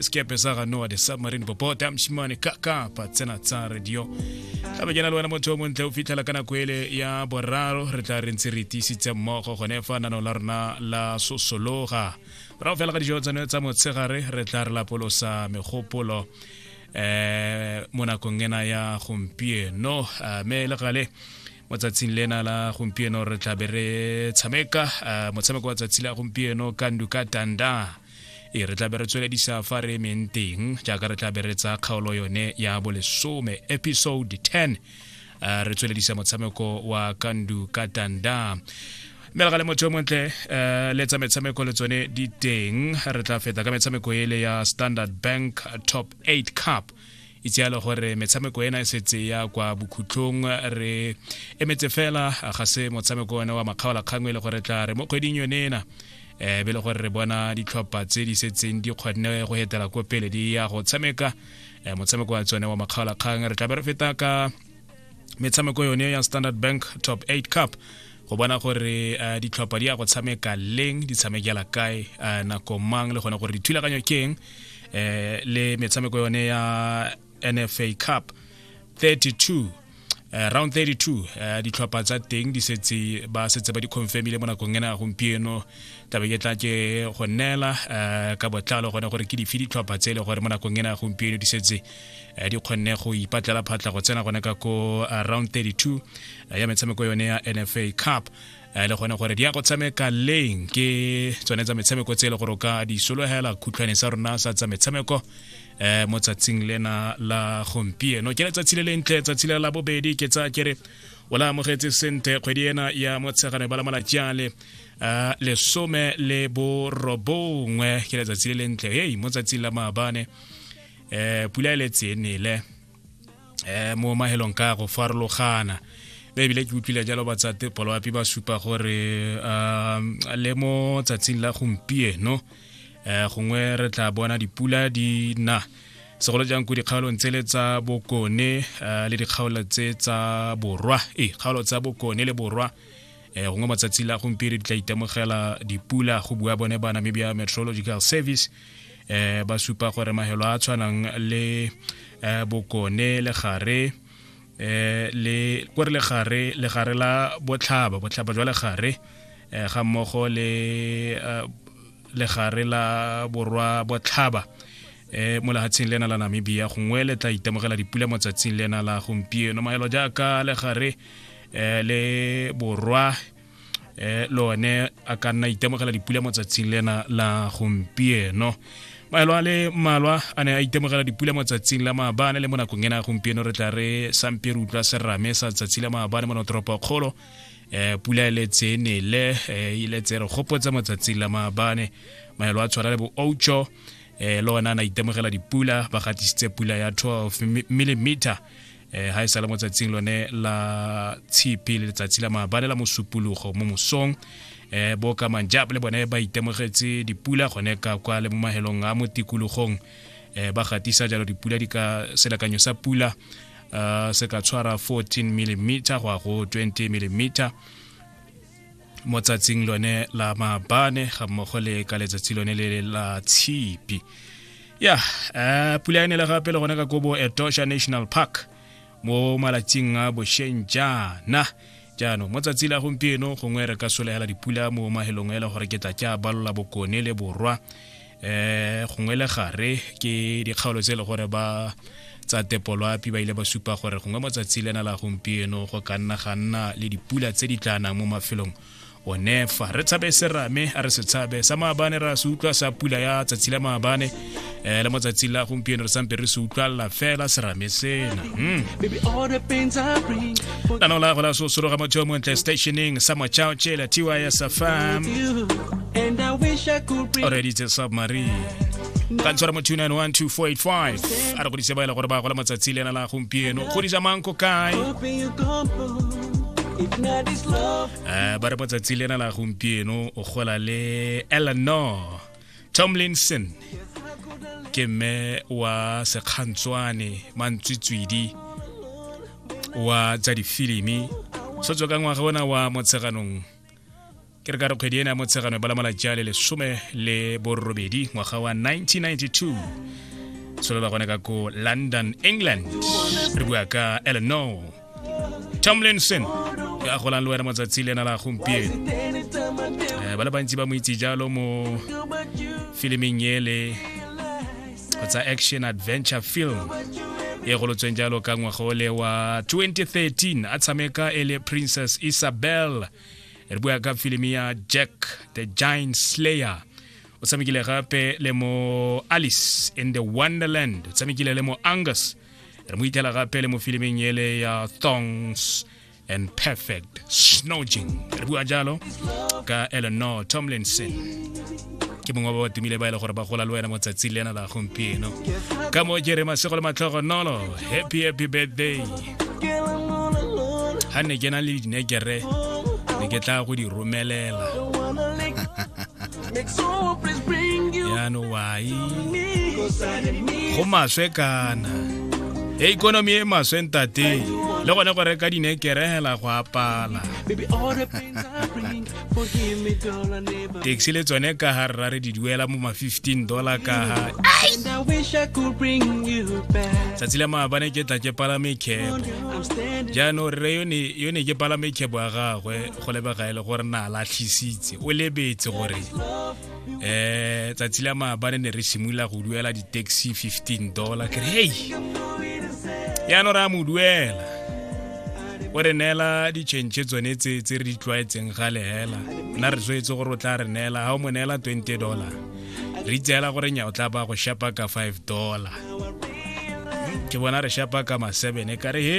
sekepe sa ga noa the submarine bobota mshimane kaka pa tsena tsa radio ka be ke na le wena motho o montle o fitlhela ka nako ele ya boraro re tla re ntse re tiisitse mmogo gone fa nano la rona la sosologa morago fela ka dijo tsone tsa motshegare re tla re lapolosa megopolo eh mo nakong ena ya gompieno eh, me le gale mo tsatsing lena la gompieno re tlabe re tshameka eh, motshameko wa tsatsi la gompieno kandu ka tanda e re tlabe re tsweledisa fa re emeng teng jaaka re tlabe re tsa kgaolo yone ya bolesome episode 10 uh, re tsweledisa motshameko wa kandu katanda mme re ga le motho yo montle um le tsa metshameko le tsone di teng re tla feta ka metshameko ele ya standard bank top 8 cup itse yalo gore metshameko ena e setse ya kwa bokhutlong re emetse fela ga se motshameko one wa makgaolakgang e le gore tla re mo kgweding yone ena um be le gore re bona ditlhopha tse di setseng di kgonne go etela ko pele di ya go tshameka eh, motshameko wa tsone wa makgaolakgang re tlabe re feta ka metshameko yone ya standard bank top 8 cup go bona gore uh, ditlhopha di ya go tshameka leng di tshamekela kae uh, nako mang le gone gore dithulaganyo ke eng eh le metshameko yone ya NFA Cup 32 Uh, round 32 uh, eh, ditlhopha tsa teng di setse ba setse ba di confirmile mo nakong ena gompieno tabe ke tla ke go neela uh, ka botlalo gone gore ke dife ditlhopha tse e le gore mo nakong ena gompieno di setse uh, di kgonne go ipatlela phatla go tsena gone ka ko uh, round 32 uh, ya metshameko yone ya nfa cup a e le gone gore di ya go tshameka leng ke tsone tsa metshameko tse e le gore o ka di sologela khutlhwane sa rona sa tsa metshameko um mo tsatsing lena la gompieno ke letsatsi le lentle tsatsi le la bobedi ke tsa kere o la amogetse sente kgwedi ena ya motshegane ba la malatsi ale um lesome le borobongwe ke letsatsi le lentle hei mo tsatsing la maabane um pula e letse e nele eh mo mahelong ka go farologana mme ebile ke utlwile jalo batsate poloapi ba supa gore um le mo tsatsing la gompieno um gongwe re tla bona dipula di na segolo jang ko dikgaolong tsele tsa bokone um le dikgaolo tse tsa borwa ee kgaolo tsa bokone le borwa um gongwe matsatsi la gompieno di tla itemogela dipula go bua bone ba namibia meteorological service eh ba supa gore mahelo a tshwanang le eh bokone le gare eh le kore le gare le gare la botlhaba botlhaba jwa le gare eh ga mmogo le eh, le gare la borwa botlhaba eh mo lehatsheng lena la Namibia gongwe le tla itemogela dipula mo tsatsing lena la gompieno mahelo jaaka le gare eh le borwa eh le one a ka nna itemogela dipula mo tsatsing lena la gompieno maelo a le mmalwa a ne a itemogela dipula mo tsatsing la maabane le mo nakong ena gompieno re tla re sampe re utlwa serame sa tsatsi la maabane mo notoropo kgolo um pula e letse nele e letse re gopotsa mo tsatsing la maabane maelo a tshwana le bo oucho um le one a na itemogela dipula ba gatisitse pula ya 12 millimeter eh ha e sala mo tsatsing lone la tshipi le letsatsi la maabane la mosupologo mo mosong eh bo ka manjab le bone ba itemogetse dipula gone ka kwa le mo mahelong a mo tikologong eh ba gatisa jalo dipula di ka selekanyo sa pula uh, se ka tshwara 14 mm go ya go 20 mm mo tsatsing lone la mabane ga mmogo le ka letsatsi lone le la tshipi ya eh, pula e nele gape le gone ka kobo etosha national park mo malatsing a bosheng jaana jaanong mo tsatsi la gompieno gongwe re ka solegela dipula mo mahelong e le gore ke tla ke a balola bokone le borwa eh gongwe le gare ke dikgaolo tse e le gore ba tsa tepoloapi ba ile ba supa gore gongwe motsatsi lena la gompieno go ka nna ga nna le dipula tse di tla nang mo mafelong o nefa re tshabe serame a re se tshabe sa maabane ra se utlwa sa pula ya tsatsi la maabane um le mo tsatsi la gompieno re sampe re se utlwalela fela serame sena hmm. na nola go la sosoro ga motho mo ntle stationing sa machao che la tiwa ya safam and i wish i could bring already it's a submarine ka ntshwara mo 2912485 a re godise ba e le gore ba gola matsatsi le ena la gompieno godisa mang ko kae hoping you come home if not this love Eh, ba re matsatsi le ena la gompieno o gola le eleanor tomlinson ke mme wa sekgantswane mantswitswidi wa tsa difilimi so tswa ka ngwaga ona wa motsheganong ke re ka re kgwedi ena ya motshegano ba lamala jale lesome le borobedi ngwaga wa 1992 solola gone ka ko london england re bua ka eleanor tomlinson ke a golang le wena matsatsi le ena la gompieno eh, ba le bantsi ba mo itse jalo mo filimeng ele kgotsa action adventure film e golotsweng jalo ka ngwaga ole wa 2013 a tshameka e le princess isabel re bua ka filimi ya jack the giant slayer o tshamekile gape le mo alice in the wonderland o tshamekile le mo angus re mo itlhela gape le mo filimeng ele ya thongs and perfect snoging re bua jalo ka eleanor tomlinson ke mongwe ba ba tumile ba e le gore ba gola le wena mo tsatsing le ena la gompieno ka moo ke re masego le matlhogonolo happy happy birthday ga ne ke na le dinekere ne ke tla go di romelela yaanong wai go maswe kana e ikonomi e maswe ntate le gone go reka dinekere hela go apala taxi le tsone ka ga rra re di duela mo ma 15 dollar ka ga tsatsi la maabane ke tla ke palame kebo jaanong rre yo ne ke palame kebo ya gagwe go lebega e le gore na latlhisitse o lebetse gore um tsatsi la maabane ne re simolola go duela di-taxi 15 dollar ke re hei yaanong re a mo duela o re neela ditšhentšhe tsone tse tse re di tlwaetseng ga lehela nna re swetse gore o tla re neela ga o mo neela 20 dollar re itseela gore nya o tla ba go shapa ka 5 dollar ke bona re shapa ka ma 7 e kare he